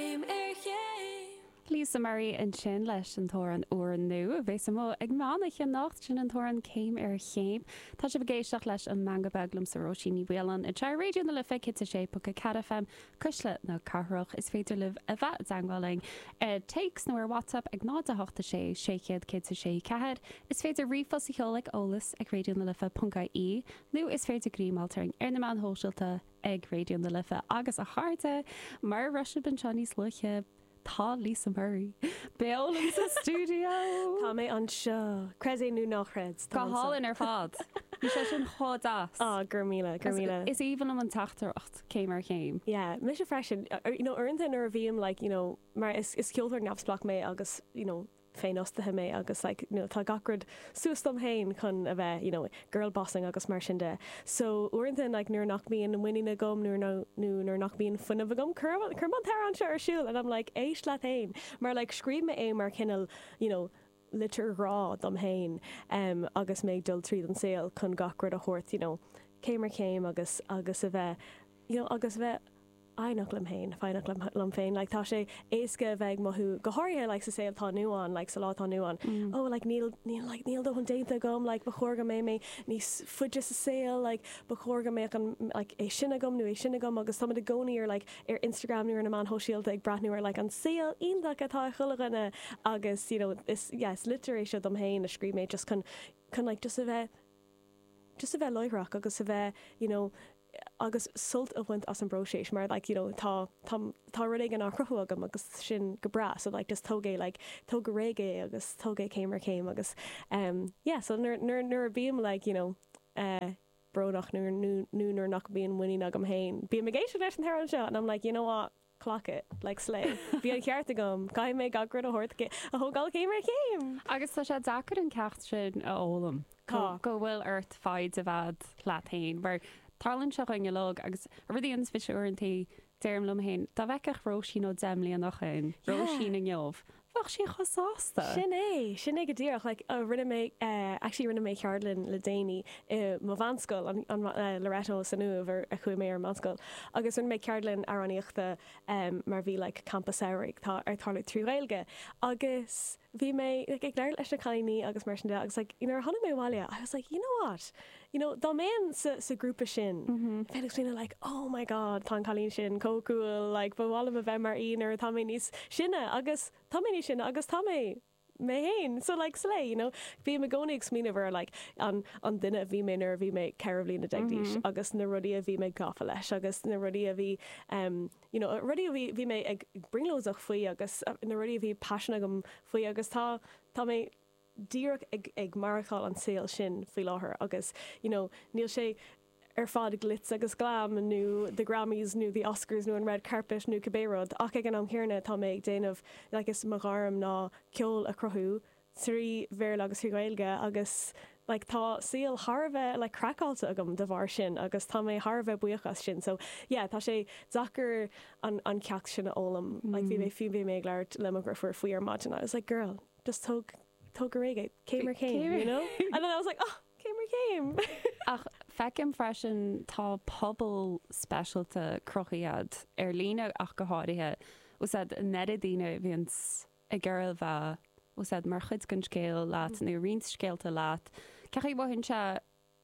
céim ar chéim. Lisa Murray ansin leis an t-amhrán úr nua a bheas amuigh ag meán oiche anocht, sin an t-amhrán céim ar chéim. Tá sibh ag éisteacht leis an Meangadh Beag liomsa Róisín Ní Mhaoláin ar Raidió na Life, 106.4 FM, Cuisle na Cathrach. Is féidir libh a bheith i dteagmháil linn ar téacs nó ar WhatsApp ag 0 8 6 600 106 4. Is féidir ríomhphost a sheoladh ag eolas ag raidiónalife.ie nó is féidir greim a fháil orainn ar na meáin shóisialta ag Raidió na Life agus a chairde, mar a d'airigh sibh anseo níos luaithe, tá Lisa Murray beo liom sa stiúideo! Tá mé anseo, creid é nó ná creid, tá mé anseo! Go hálainn ar fad! Bhí sé sin chomh deas! Aw, go raibh míle, go raibh míle! Is aoibhinn liom an teachtaireacht, céim ar chéim. Yeah, mise freisin. You know, uaireanta nuair a bhím like, you know, mar is, is ceoltóir neamhspleách mé agus, you know, féinfhostaithe mé agus like you know tá gach rud suas dom féin chun a bheith you know girlbossing agus mar sin de so uaireanta like nuair nach mbíonn muinín agam nuair nó nó nuair nach mbíonn fuinneamh agam cuirim cuirim an t-amhrán seo ar siúl and I'm like éist leat féin mar like scríobh mé é mar chineál you know litir ghrá dom féin em agus mé ag dul tríd an tsaol chun gach rud a thabhairt you know céim ar chéim agus agus a bheith you know agus a bheith foighneach liom féin, foighneach liom liom féin like tá sé éasca a bheith ag mothú go háirithe like sa saol atá inniu ann like sa lá atá inniu ann oh like níl níl like níl dóthain déanta agam like ba chóir go mbeadh mé níos faide sa saol like ba chóir go mbeadh an like é sin agam nó é sin agam agus táimid i gcónaí ar like ar Instagram nó ar na meáin shóisialta ag breathnú ar like an saol iontach atá ag chuile dhuine agus you know is yeah is litir é seo dom féin a scríobh mé just chun chun like just a bheith just a bheith láithreach agus a bheith you know agus sult a bhaint as an bpróiseas mar like you know tá tá tá rud éigin á chruthú agam agus sin go breá so like just tóg é like tóg go réidh é agus tóg é céim ar chéim agus em yeah so nuair nuair nuair a bhím like you know eh brónach nuair nó nó nuair nach mbíonn muinín agam féin bím ag éisteacht leis an t-amhrán seo and I'm like you know what clock it, like slay. Bhí an cheart agam, caithfidh mé gach rud a thógáil céim ar chéim! Agus tá sé deacair an ceacht sin a fhoghlaim. Tá. Go bhfuil ort foighid a bheith agat leat fhéin, mar tarlaíonn seo dúinn uilig agus rud éigin, tá a fhios agat, uaireantaí, deirim liom fhéin, dá bhfeicfeadh Róisín ó deich mbliana ó shoin, Róisín inniu, Bheadh sí chomh sásta. Sin é, sin é go díreach. Like uh rinne mé eh actually rinne mé ceardlann le déanaí i mo mheánscoil, an an eh Loreto san Uaimh áit a chuaigh mé ar an mheánscoil agus rinne mé ceardlann amhránaíochta em mar bhí like campa samhraidh ag tarlú trí Ghaeilge agus bhí mé like ag labhairt leis na cailíní agus mar sin de agus like nuair a tháinig mé abhaile I was like you know what? you know dá mbeinn sa sa ghrúpa sin bheinn ag smaoineamh like oh my god tá an cailín sin chomh cool like ba mhaith liom a bheith mar í nuair atá mé níos sine agus tá mé níos sine agus tá mé mé féin so like slay you know bím i gcónaí ag smaoineamh ar like an an duine a bhí mé nuair a bhí mé ceithre bhliana déag d'aois agus na rudaí a bhí mé gafa leis agus na rudaí a bhí em you know rudaí a bhí bhí mé ag brionglóideach faoi agus na rudaí a bhí paisean agam faoi agus tá tá mé díreach ag maireachtáil an saol sin faoi láthair agus you know níl sé ar fad glitz agus glam nó the Grammys nó the Oscars nó an red carpet nó cibé rud ach ag an am chéanna tá mé ag déanamh like is mo ghairm ná ceol a chruthú trí Bhéarla agus trí Ghaeilge agus like tá saol thar a bheith like craiceáilte agam de bharr sin agus tá mé thar a bheith buíoch as sin so yeah tá sé deacair an an ceacht sin a fhoghlaim like bhí mé fiú bhí mé ag labhairt le mo dheirfiúr faoi ar maidin I was like girl just tóg tóg go réidh é, céim ar chéim, you know? And then I was like, oh, céim ar chéim! Ach feicim freisin tá pobal speisialta cruthaithe agat ar líne ach go háirithe, is a lán daoine a bhíonn ag iarraidh a bheith mar chuid den scéal leat nó roinnt scéalta leat, cén chaoi a mothaíonn sé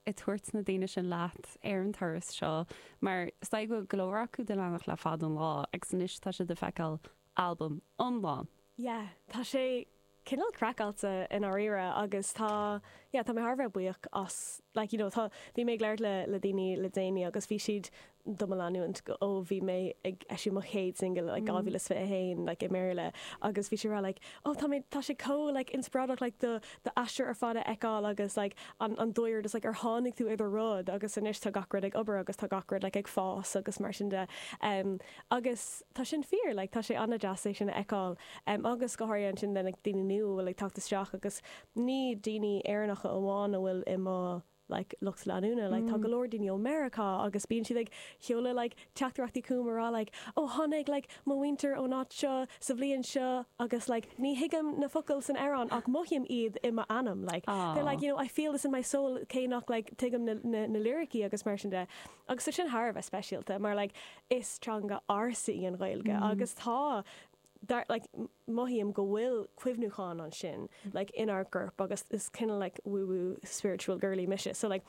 ag tabhairt na daoine sin leat ar an turas seo mar is dóigh go bhfuil go leor acu do do leanacht le fada an lá agus anois tá siad ag feiceáil albam iomlán. Yeah, tá sé cineál craiceáilte i ndáiríre agus tá, yeah, tá mé thar a bheith buíoch as, like, you know, tá, bhí mé ag labhairt le, le daoine le déanaí agus bhí siad do mo leanúint ó bhí mé ag eisiú mo chéad singil like dhá mhíle is fiche haon like i mBéarla agus bhí siad ag rá like ó tá mé tá sé chomh like inspioráideach like do do aistear ar fad a fheiceáil agus like an an dóigh like ar tháinig tú ar rud agus anois tá gach rud ag obair agus tá gach rud like ag fás agus mar sin de em agus tá sin fíor like tá sé an-deas é sin a fheiceáil em agus go háirithe ansin le like daoine nua a bhfuil ag teacht isteach agus ní daoine Éireannacha amháin a bhfuil i mo like lucht leanúna like tá go leor daoine ó Meiriceá agus bíonn siad ag seoladh like teachtaireachtaí chugam ag rá like oh tháinig like mo mhuintir ón áit seo sa bhliain seo agus like ní thuigim na focail san amhrán ach mothaím iad i m'anam like they're like you know I feel this in my soul cé nach like tuigim na na na liricí agus mar sin de agus tá sin thar a bheith speisialta mar like is teanga ársa í an Ghaeilge agus tá dar, like, mothaím go bhfuil cuimhniúchán ansin, like, inár gcorp agus is kind of like woo woo spiritual girly mise so like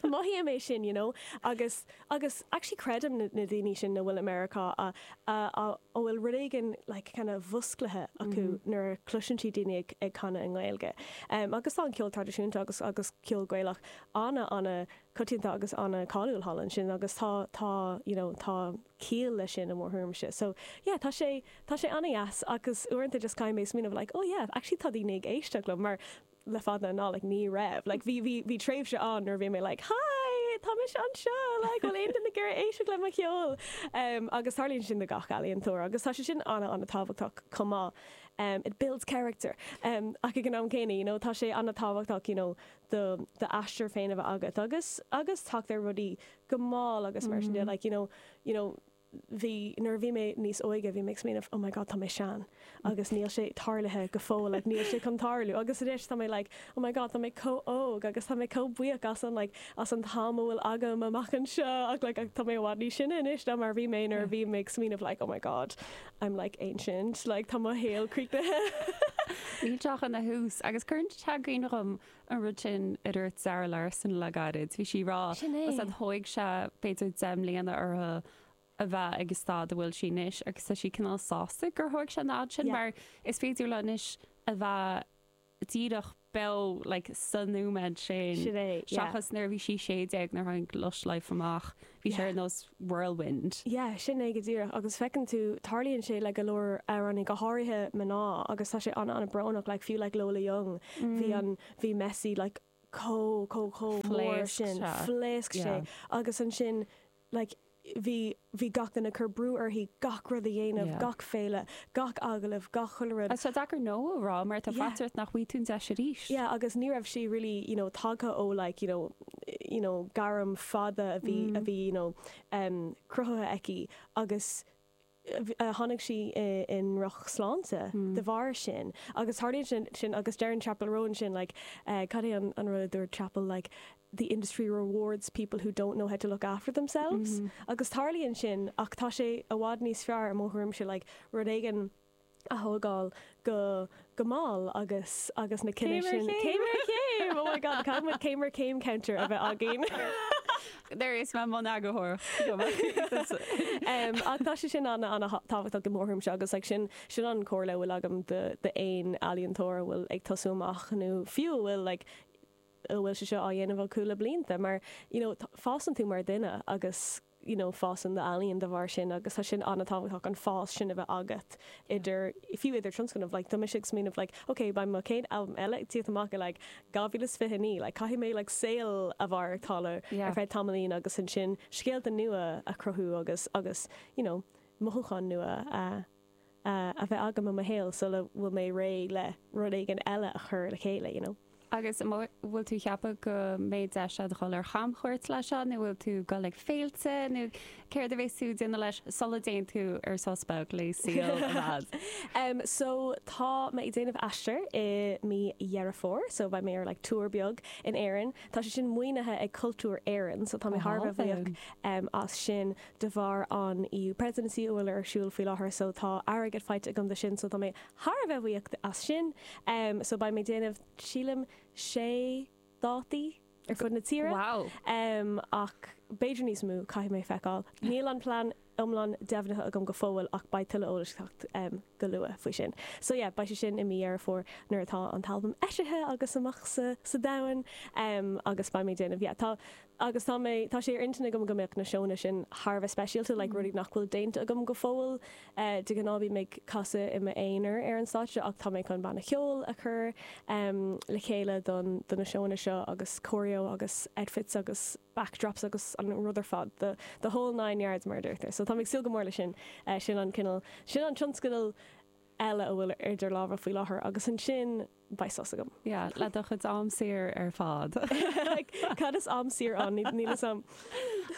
mothaím é sin, you know, agus, agus actually creidim na, na daoine sin a bhfuil i Meiriceá a, a, a, a bhfuil rud éigin like kind of múscailte acu nuair a chloiseann siad daoine ag, ag canadh i nGaeilge. Em, agus tá an ceol traidisiúnta agus, agus ceol Gaelach ana, ana coitianta agus ana cáiliúil thall ansin agus tá, tá, you know, tá ciall leis sin i mo thuairimse. So, yeah, tá sé, tá sé an-deas agus uaireanta just caithfidh mé smaoineamh like, oh yeah, actually tá daoine ag éisteacht liom mar le fada an lá like ní raibh, like bhí, bhí, bhí tréimhse ann nuair a bhí mé like hi, tá mise anseo like bhfuil aon duine ag iarraidh éisteacht le mo cheol? Em, agus tarlaíonn sin do gach ealaíontóir agus tá sé sin ana, ana tábhachtach chomh maith. Em, it builds character. Em, ach ag an am céanna, you know, tá sé ana tábhachtach, you know, do, do aistear féin a bheith agat agus, agus teacht ar rudaí go mall agus mar sin de, like, you know, you know bhí, nuair a bhí mé níos óige bhí mé ag smaoineamh oh my god tá mé sean agus níl sé tarlaithe go fóill like níl sé chun tarlú agus anois tá mé like oh my god tá mé chomh óg agus tá mé chomh buíoch as an like as an t-am a bhfuil agam amach anseo ach like tá mé i bhfad níos sine anois ná mar a bhí mé nuair a bhí mé ag smaoineamh like oh my god I'm like ancient like tá mo shaol críochnaithe Níl tú ach ina thús agus cuireann sé i gcuimhne dhom an rud sin a dúirt Zara Larsson le gairid. Bhí sí ag rá, Sin é. Sea, thóg sé b'fhéidir deich mbliana orthu a bheith ag an staid a bhfuil sí anois agus tá sí cineál sásta gur thóg sé an fhad sin Yeah. mar is féidir léi anois a bheith díreach beo like sa nóiméad sin Sin é, yeah. seachas nuair a bhí sí 16 nuair a tháinig Lush Life amach. Bhí sé ar nós whirlwind. Yeah, sin é go díreach agus feiceann tú, tarlaíonn sé le go leor amhránaí, go háirithe mná agus tá sé ana ana brónach, like fiú like Lola Young, bhí an, bhí Messy like chomh, chomh, chomh mór sin, phléasc sé agus ansin like bhí, bhí gach duine ag cur brú uirthi gach rud a dhéanamh, gach féile, gach agallamh, gach, chuile rud. Agus tá sé deacair no a rá mar tá faitíos ort nach bhfaighidh tú an deis arís. Yeah, agus ní raibh sí really you know tagtha ó like you know. you know gairm fada a bhí a bhí you know em cruthaithe aici agus eh tháinig sí i i ndrochshláinte de bharr sin agus tarlaíonn sin sin agus deireann Chappell Roan sin like eh cad é an an rud a dúirt Chappell like the industry rewards people who don't know how to look after themselves agus tarlaíonn sin ach tá sé i bhfad níos fearr i mo thuairimse like rud éigin a thógáil go, go mall agus, agus na cinntí Céim ar sin chéim! céim ar chéim! Oh my God, caithfidh muid céim ar céim counter a bheith againn! Agus mé i mbun eagarthóireacht! em ach tá sé sin ana, ana tábhachtach i mo thuairimse agus like sin, sin an comhairle a bhfuil agam do, do aon ealaíontóir a bhfuil ag tosú amach nó fiú a bhfuil like, a bhfuil sé seo á dhéanamh acu le blianta mar you know fásann tú mar dhuine agus. you know fásann d'ealaín de bharr sin agus tá sin an-tábhachtach an fás sin a bheith agat idir fiú idir tionscnamh like tá mise ag smaoineamh like ok beidh mo chéad albam eile ag tíocht amach i like 2029 like caithfidh mé like saol a mhaireachtáil ar feadh tamaillín agus ansin scéalta nua a chruthú agus agus you know mothúcháin nua a a bheith agam i mo shaol sula bhfuil mé réidh le rud éigin eile a chur le chéile, you know. Agus an bhfuil tú ag ceapadh go mbeidh deis agat dhul ar chamchuairt leis seo nó bhfuil tú dhul ag féilte nó céard a bheas tú déanamh leis sula dtéann tú ar sos beag le saol ar fad? Em so tá mé ag déanamh aistear i mí Dheireadh Fómhair so beidh mé ar like tour beag in Éirinn. Tá sé sin maoinithe ag Cultúr Éireann so tá mé thar a bheith buíoch em as sin. de bharr an EU Presidency a bhfuil ar siúl faoi láthair so tá airgead faighte agam do sin so tá mé thar a bheith buíoch as sin em so beidh mé déanamh sílim sé dátaí ar fud na tíre wow em ach b'fhéidir níos mó caithfidh mé feiceáil níl an plean iomlán deimhnithe agam go fóill ach beidh tuilleadh eolais ag teacht em go luath faoi sin so yeah beidh sé sin i mí Dheireadh Fómhair nuair atá an t-albam eisithe agus amach sa sa domhan em agus beidh mé déanamh yeah tá agus tá mé, tá sé ar intinn agam go mbeadh na seónna sin thar a bheith speisialta, like rudaí nach bhfuil déanta agam go fóill. De ghnáth bím ag casadh i m'aonar ar an stáitse ach tá mé chun banna ceoil a chur le chéile don, do na seónna seo agus choreo agus outfits agus backdrops agus an rud ar fad, the, the whole nine yards mar a deirtear. So tá mé ag súil go mór leis sin. Sin an cineál, sin an tionscadal eile a bhfuil idir lámha faoi láthair agus ansin, beidh sos agam. Yeah, le do chuid am saor ar fad. Cad is am saor ann? Níl fhios a'm.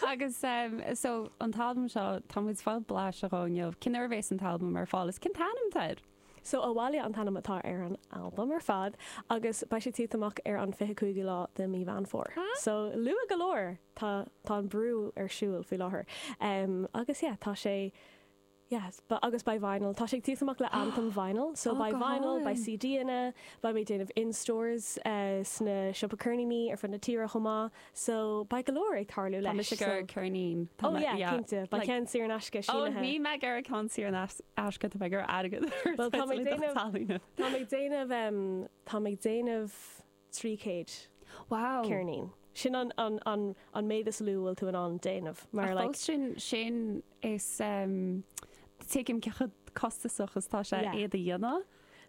Agus em so an t-albam seo, tá muid fáil blaiseadh dhó inniu. Cén uair a bheas an t-albam ar fáil is cén t-ainm atá air? So Abhaile an t-ainm atá ar an albam ar fad agus beidh sé tíocht amach ar an fiche cúigiú lá de mí Mheán Fómhair. So luath go leor! Tá tá an brú ar siúl faoi láthair. Em agus yeah, tá sé. Yes, but agus beidh vinyl, tá sé ag tíocht amach le anthem vinyl, so beidh vinyl, beidh CD-anna, beidh mé ag déanamh in stores sna siopaí ceirníní ar fud na tíre chomh maith, so beidh go leor ag tarlú leis. Tá mise ag iarraidh ceirnín. Oh yeah, cinnte, beidh ceann saor in aisce sínithe. Oh, ní mbeidh ag iarraidh ceann saor in aisce, tá mé ag iarraidh airgead. Bhuel, tá mé ag déanamh, tá mé ag déanamh, tá mé ag déanamh, 300 Wow! ceirnín. Sin an an méad is lú a bhfuil tú in ann déanamh mar Ach like. fós sin sin is em tuigim cé chomh costasach is atá sé Yeah. iad a dhéanamh.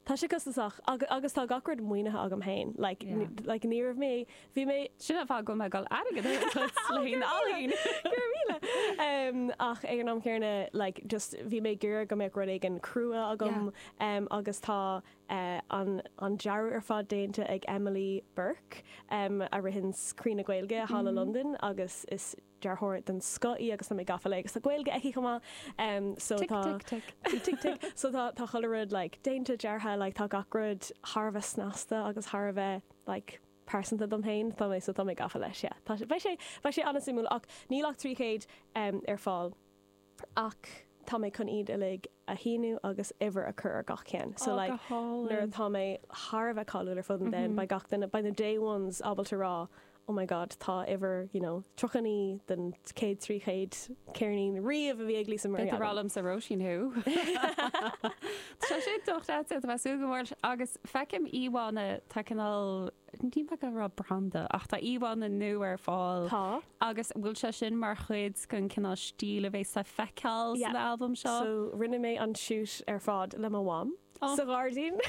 Tá sé costasach agus agus tá gach rud maoinithe agam féin like Yeah. like ní raibh mé bhí mé Sin an fáth go mbeadh an airgead ar a dtoil le haon ealaín. Go raibh míle! Em ach ag an am chéanna like just bhí mé ag iarraidh go mbeadh rud éigin crua agam Yeah. em agus tá an dearadh ar fad déanta ag Emily Burke a ritheann Croí na Gaeilge thall i Londain agus is dearthóir den scoth í agus tá mé gafa léi agus tá Gaeilge aici chomh maith so tá tic tic tic tic tic so tá tá chuile rud like déanta deartha like tá gach rud thar a bheith snasta agus thar a bheith like pearsanta dom féin tá mé so tá mé gafa leis yeah tá sé beidh sé beidh sé an-suimiúil ach níl ach trí chéad ar fáil. ach tá mé chun iad uilig a shíniú agus uimhir a chur ar gach ceann so like nuair atá mé thar a bheith cáiliúil ar fud an domhain beidh gach duine, beidh na day ones ábalta a rá oh my god tá uimhir you know 39 den chéad trí chéad ceirnín riamh a bhí ag Lisa Marie agam. B'fhéidir rá liomsa Róisín thú! Tá sé docht leatsa, tá mé súil go bhfuil agus feicim íomhánna tá cineál, Ní maith liom a rá branda ach tá íomhánna nua ar fáil. Tá. Agus an bhfuil sé sin mar chuid den cineál stíl a bheas le feiceáil san albam seo? Yeah. So rinne mé an shoot ar fad le mo mham sa ghairdín.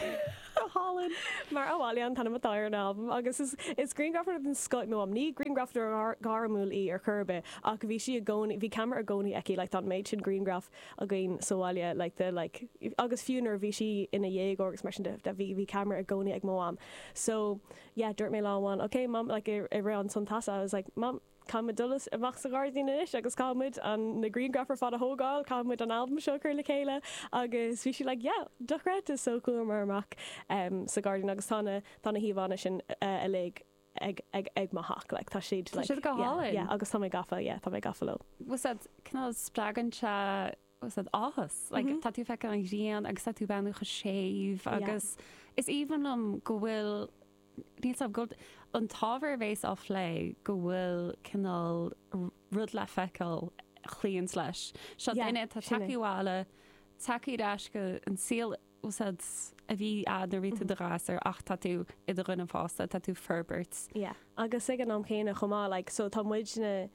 Go hálainn. Mar Abhaile an t-ainm atá ar an albam agus is grianghrafadóir den scoth í mo mham. Ní grianghrafadóir gairmiúil í ar chor ar bith ach bhí sí i gcónaí, bhí ceamara i gcónaí aici, like tá an méid sin grianghraf. againn sa bhaile like the like agus fiú nuair a bhí sí ina déagóir agus mar sin de bhí bhí camera i gcónaí ag mo mham so yeah dúirt mé lá amháin okay mom like i rith an tsamhraidh I was like mom caithfidh muid dul amach sa ghairdín anois agus caithfidh muid an na grianghraif ar fad a thógáil caithfidh muid an albam seo a chur le chéile agus bhí sí like yeah dochreidte so chuamar amach ehm sa ghairdín agus tá na tá na híomhánna sin uilig eh ag mo theach like tá siad like tá siad go hálainn yeah yeah agus tá mé gafa yeah tá mé gafa leo. tá siad cineál spreagann siad áthas like tá tú ag feiceáil an ghrian agus tá tú ag breathnú chomh séimh agus yeah is aoibhinn liom go bhfuil níl a fhios agam an t-ábhar a bheas á phlé go bhfuil cineál rud le feiceáil a luíonns leis seo yeah duine atá ag teacht abhaile teacht ar ais go dtí an saol a bhí agat nuair a bhí tú i do ghasúr ach tá tú i do dhuine fásta, tá tú ag forbairt. Yeah agus ag an am chéanna chomh maith like so tá muidne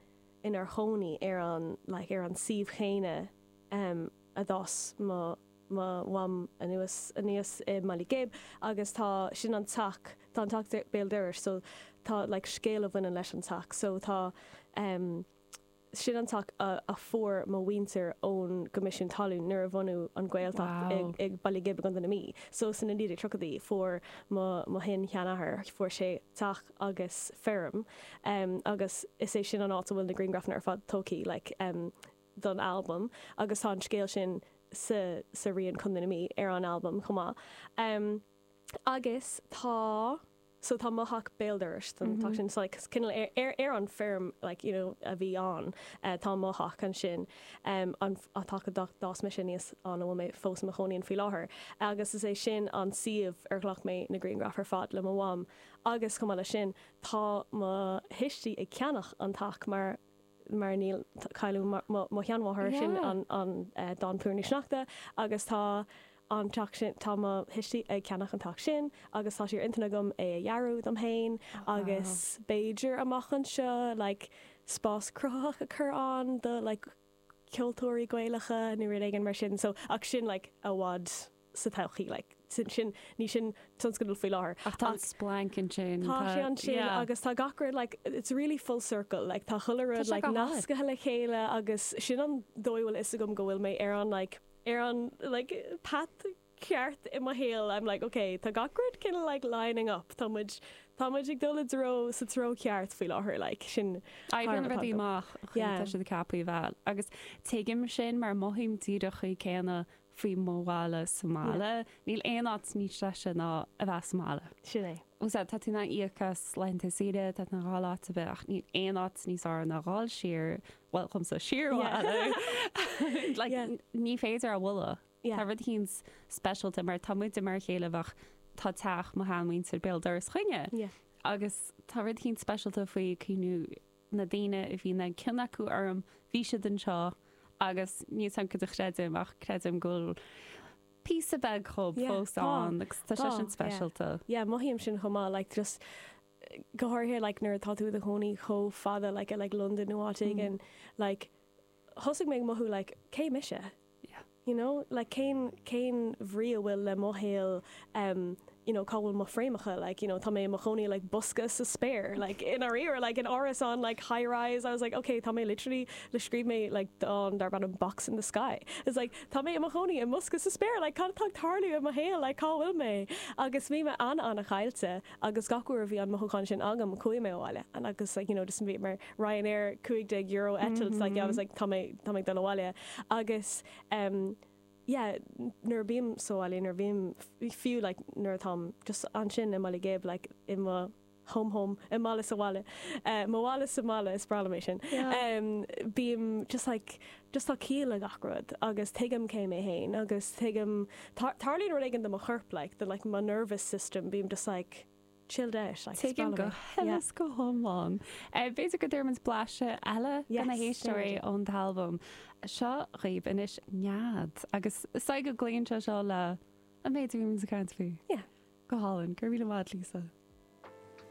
inár chónaí ar an like ar an suíomh chéanna em a d'fhás mo mo mham anuas aníos i mBaile Ghib agus tá sin an teach tá an teach béal dorais so tá like scéal a bhaineann leis an teach so tá em Sin an teach a fuair mo mhuintir ón gCoimisiún Talún nuair a bunaíodh an Ghaeltacht i mBaile Ghib i gContae na Mí. So sna 1930idí fuair mo mo shin sheanathair, fuair sé teach agus feirm agus is é sin an áit a bhfuil na grianghrafanna ar fad tógtha like don albam agus tá an scéal sin sa sa rian Contae na Mí ar an albam chomh maith. Agus tá. so tá mo theach béal dorais don teach sin so like cineál ar ar an feirm like you know a bhí ann eh tá mo theach ansin em an an teach a d'fhás mise aníos ann a bhfuil mé fós i mo chónaí ann faoi láthair agus is é sin an suíomh ar ghlac mé na grianghraif ar fad le mo mham agus chomh maith leis sin tá mo thuistí ag ceannacht an teach mar mar nuair a cailleadh mo sheanmháthair, sin an dán Plúirín Sneachta agus tá an teach sin, tá mo thuistí ag ceannach an teach sin agus tá sé ar intinn agam é a dhearadh dom féin agus b'fhéidir amach anseo like spás cruthaitheach a cur ann do like ceoltóirí Gaelacha nó rud éigin mar sin so ach sin like i bhfad sa todhchaí. Sin, ní shin tionscadal faoi láthair ach tá an splanc ansin, tá sé ansin agus tá gach rud, it's really full circle, tá chuile rud nascaithe le chéile agus sin an dóigh a bhfuil fhios agam go bhfuil mé ar an, ar an path ceart i mo shaol, I'm like ok, tá gach rud cineál like lining up, tá muid, tá muid ag dul i dtreo, sa treo ceart faoi láthair like, sin thar na rudaí amach, tá sé ceaptha a bheith agus tuigim sin mar mothaím díreach céanna faoi mo bhaile sa mbaile. Níl aon áit níos deise ná a bheith sa mbaile. Sin é. Sea, tá tú in ann íoc as laethanta saoire, tá tú in ann dul áit ar bith ach níl aon áit níos fearr ná dul siar, bhuel, dhomsa, siar abhaile. Like, ní féidir é a bhualadh. Tá rud eicínt speisialta mar tá muide mar a chéile, bhuel, tá teach mo sheanmhuintir béal dorais chugainne agus tá rud eicínt speisialta faoi cuimhniú na daoine a bhí cion acu orm, bhí siad anseo agus níl fhios agam céard a chreidim ach creidim go bhfuil píosa beag dhíobh Yeah, fós tá, ann agus tá sé tá, sin yeah, speisialta. yeah, mothaím sin chomh maith, like, just go háirithe, like, nuair atá tú i do chónaí chomh fada, like, i, like, Londain nó áit éigin, like, thosaigh mé ag mothú like cé mise? You know? Like cén, cén bhrí atá le mo shaol em you know cá bhfuil mo fréamacha like you know tá mé i mo chónaí i like bosca sa spéir like i ndáiríre like in árasán like high rise I was like okay tá mé literally like scríobh mé like dán darb ainm Box in the Sky it's like tá mé i mo chónaí i mbosca sa spéir like cad atá ag tarlú i mo shaol like cá bhfuil mé? Agus bhí mé ana-ana-chaillte agus gach uair a bhí an mothúchán sin agam chuaigh mé abhaile agus like you know just bhíomar Ryanair cúig déag euro eitilt like yeah I was like tá mé tá mé ag dul abhaile agus em yeah nuair a bhím sa bhaile nuair a bhím fiú like nuair atáim just ansin i mBaile Ghib like i mo home home mo bhaile sa bhaile eh mo bhaile sa mbaile is breá liom é sin yeah em bím just like just tá ciall le gach rud agus tuigim cé mé féin agus tuigim tarlaíonn rud éigin do mo chorp like the like mo nervous system bím just like chilled out, like Tuigim go huile yeah is go hiomlán. B'fhéidir go dtabharfaimid blaiseadh eile do na héisteoirí ón t-albam seo dhaoibh anois, Nead, agus is dóigh go gcloíonn sé seo le an méid a bhí muid ag caint faoi. Yeah. Go hálainn, go raibh míle maith agat, Lisa.